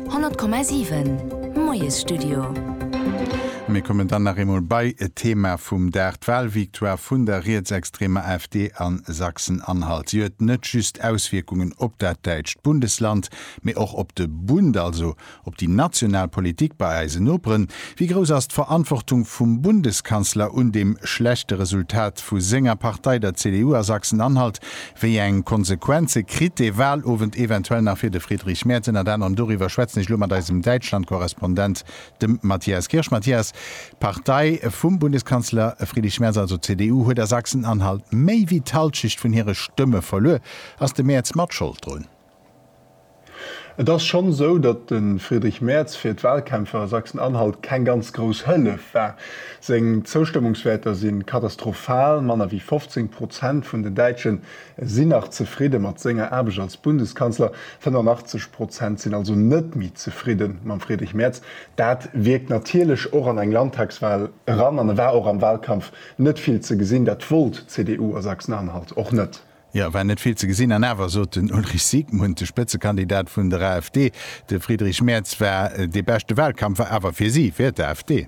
100,7 Moiesstudio. Mir kommen dann nach eemol bei e Thema vum Dag, d'Walvictoire vun der rietsextremer AfD a Sachsen-Anhalt. Si huet net just Auswierkungen op dat däitscht Bundesland, mee och op de Bund, also op déi national Politik bei eise Noperen. Wéi grouss ass d'Verantwortung vum Bundeskanzler un deem schlechte Resultat vu senger Partei, der CDU a Sachsen-Anhalt? Wéi eng Konsequenze kritt dee Wahlowend eventuell nach fir de Friedrich Merz? Ënnert anerem doriwwer schwätzen ech elo mat eisem Däitschland-Korrespondent, dem Matthias Kirsch. Matthias, d'Partei vum Bundeskanzler Friedrich Merz, also d'CDU, huet a Sachsen-Anhalt méi wéi d'Halschecht vun hire Stëmme verluer. Ass de Merz mat Schold drun? Et ass schonn esou, datt de Friedrich Merz fir d'Walkämpfer a Sachsen-Anhalt keng ganz grouss Hëllef war. Seng Zoustëmmungswäerter si katastrophal, manner wéi 15 Prozent vun den Däitschen sinn nach zefridde mat senger Aarbecht als Bundeskanzler, 85 Prozent sinn also net méi zefridde mam Friedrich Merz. Dat wierkt natierlech och an eng Landtagswal eran an e war och am Walkampf net vill ze gesinn. Dat wollt d'CDU a Sachsen-Anhalt och net. Jo, war net vill ze gesinn. An awer sot den Ulrich Siegmund, de Spëtzekandidat vun der AfD, de Friedrich Merz war dee beschte Wahlkampf, war awer fir si, fir d'AfD.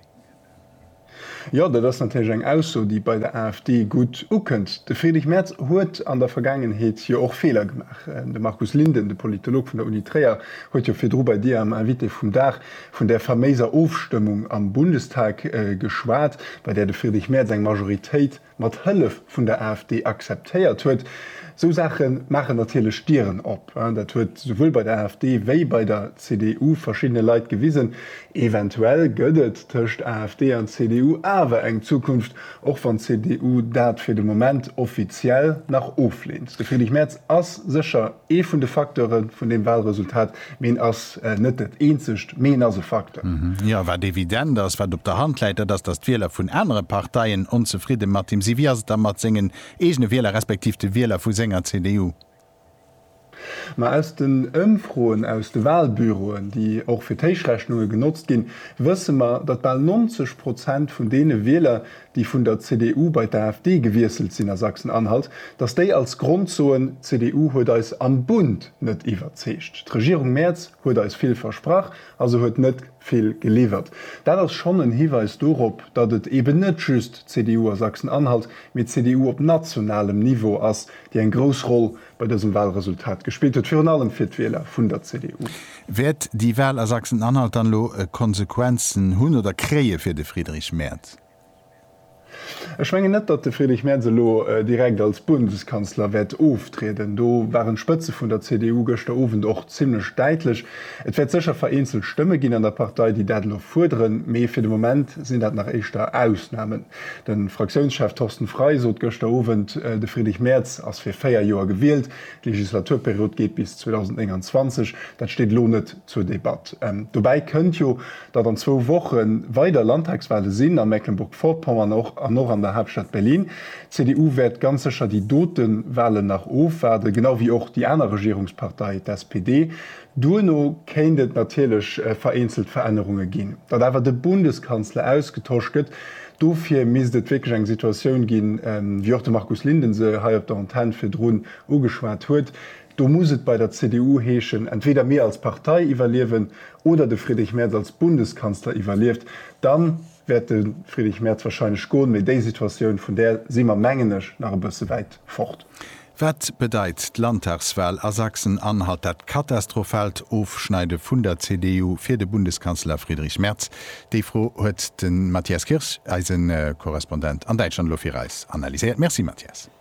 Jo, dat ass natierlech eng Ausso, déi bei der AfD gutt ukënnt. De Friedrich Merz huet an der Vergaangenheet jo och Feeler gemaach. De Markus Linden, de Politolog vun der Uni Tréier, huet jo virdru bei Dir am Invité vum Dag vun där faméiser Ofstëmmung am Bundestag geschwat, bei där de Friedrich Merz eng Majoritéit, mat Hëllef vun der AfD akzeptéiert huet, esou Saache maachen natierlech Dieren op. Dat huet souwuel bei der AfD wéi bei der CDU verschiddene Leit gewisen. Eventuell gëtt et tëscht AfD an CDU awer eng Zukunft, och wann d'CDU dat fir de Moment offiziell nach ofleent. De Friedrich Merz ass sécher. Ee vun de Facteure vun deem Wahlresultat, mee en ass net dat eenzegt, mee en ass e Facteur. Jo, wat evident ass, wat op der Hand läit, dat ass, datt d'Wieler vun anere Parteien onzefridde mat him sinn. Wéi ass et da mat sengen eegene Wieler, respektiv de Wieler vu senger CDU? Ma aus den Ëmfroen, aus de Wahlbüroen, déi och fir d'Héichrechnunge genotzt ginn, wësse mer, datt bal 90 Prozent vun deene Wieler, déi vun der CDU bei d'AfD gewiesselt sinn a Sachsen-Anhalt, datt déi als Grond soen, d'CDU huet eis am Bund net iwwerzeegt. D'Regierung Merz huet eis vill versprach a se huet net vill geliwwert. Dat ass schonn en Hiweis dorop, datt et eben net just d'CDU a Sachsen-Anhalt, mee d'CDU op nationalem Niveau ass, déi eng grouss Roll bei dësem Walresultat gespillt huet, virun allem fir d'Wieler vun der CDU. Wäert déi Wal a Sachsen-Anhalt dann elo Konsequenzen hunn oder kréie fir de Friedrich Merz? Ech mengen net, datt de Friedrich Merz elo direkt als Bundeskanzler wäert oftrieden. Do waren d'Spëtze vun der CDU gëschter Owend och zimmlech däitlech. Et wäert sécher vereenzelt Stëmme ginn an der Partei, déi dat elo fuerderen, mee fir de Moment sinn dat nach éischter Ausnamen. De Fraktiounschef Thorsten Frey sot gëschter Owend, de Friedrich Merz ass fir véier Joer gewielt, d'Legislaturperiod geet bis 2029. Dat steet elo net zur Debatt. Dobäi kënnt jo, datt an zwou Woche weider Landtagswale sinn a Mecklenburg-Vorpommern och an och an der Haaptstad Berlin. D'CDU wäert ganz sécher déi dote Walen nach ofwaarden, genau wéi och déi aner Regierungspartei, d'SPD. Duerno kéint et natierlech vereenzelt Verännerunge ginn. Datt awer de Bundeskanzler ausgetosch gëtt, dofir misst et wierklech eng Situatioun ginn, wéi och de Markus Linden se hei op der Antenn virdrun ugeschwat huet, Do muss et bei der CDU heeschen, entweder mir als Partei iwwerliewen oder de Friedrich Merz als Bundeskanzler iwwerlieft. Dann wäert de Friedrich Merz wahrscheinlech goen, mee déi Situatioun, vun där si mer, mengen ech, nach e bësse wäit fort. Wat bedeit d'Landtagswal a Sachsen-Anhalt, dat katastrophaalt Ofschneide vun der CDU, fir de Bundeskanzler Friedrich Merz? Déi Fro huet de Matthias Kirsch, eise Korrespondent an Däitschland, elo fir eis analyséiert. Merci Matthias.